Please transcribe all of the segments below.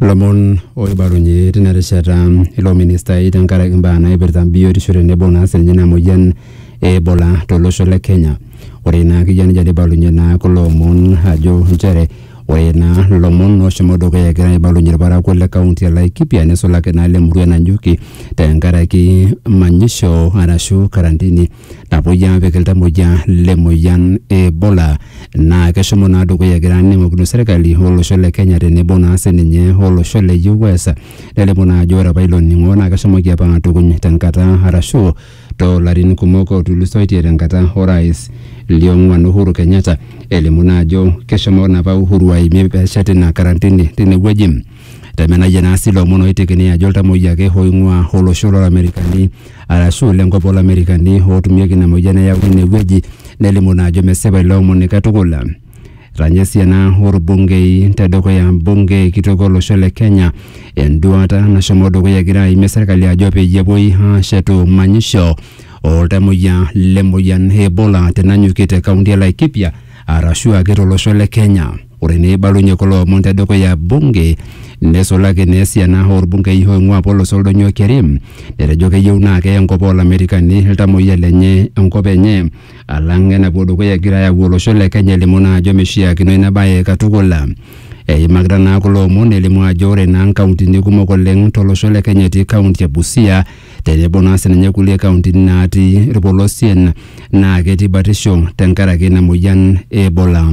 lomon oibalunye tina rishata ilo ministai tenkaraki imbaa naipirta biotisho tenebo naa sininye ina moyian e Ebola tolosho le Kenya. Ore naa akeyie nejia neibalunye naa kulo omon ajo nchere ore naa lomon oshomo dukuya egira aibalunye ilparakuo le kaunti e Laikipia neisulaki naa ile murua e Nanyuki tenkaraki manyisho arashu karantini napuoi aapik iltamoyia le moyian e Ebola naa keshomo naa dukuya egira aning'okino serkali olosho le Kenya tenebo naa sininye olosho le US nelimu naa ajo ore apa ilo ning'o naa keshomoki apa aatukuny tenkata arashu toolarin kumok otulusoitie tenkata orais liong'uan Uhuru Kenyatta elimu naa ajo keshomo naa apa Uhuru aimie peshet ina karantini tinewueji. Temenayia naa sii lomon oitekini ajo iltamoyia ake oing'ua olosho lolamerikani arashu lenkop olamerikani ootumieki ina moyian neyauni ine wueji nelimu naa ajo mesipa ilo omoni katukul. Etanya sii ena orbungei tedukuya bunge kitok olosho le Kenya enduata nashomo dukuya egira aimie serkali ajo peyie epuoi aashetu manyisho oltamoyia le moyian e Ebola tenanyuki te kaunti e Laikipia arashu ake tolosho le Kenya. Ore neibalunye kulo omon te dukuya bunge, neisulaki naa esiana oolbungei oing'ua apa olosho Oldonyio Kerim, netejo keyieu naa keya enkop oo Lamerikani iltamoyia lenye enkop enye alang enapuo dukuya egira ayau olosho le Kenya elimu naa ajo meishiakino ina bae katukul. Eimakita naa kulo omon elimu ajo ore naa nkauntini kumok oleng to losho le Kenya etii kaunti e Busia tenebo naa sininye kulie kauntini natii ilpolosien naa ketii batisho tenkaraki ina moyian e Ebola.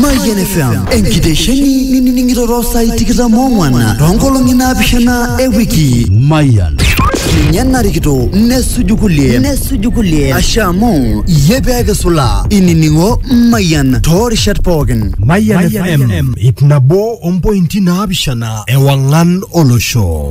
Mayian FM enkitesheni ninining'ito too saai tikitam oong'wan too nkolong'i naapishana e wiki. Mayian. Ninye narikito nesuju kulie nesuju kulie ashe amu iyie pee kisula inining'o Mayian too rishat pookin. Mayian FM ip nabo ompointi naapishana ewang'an olosho.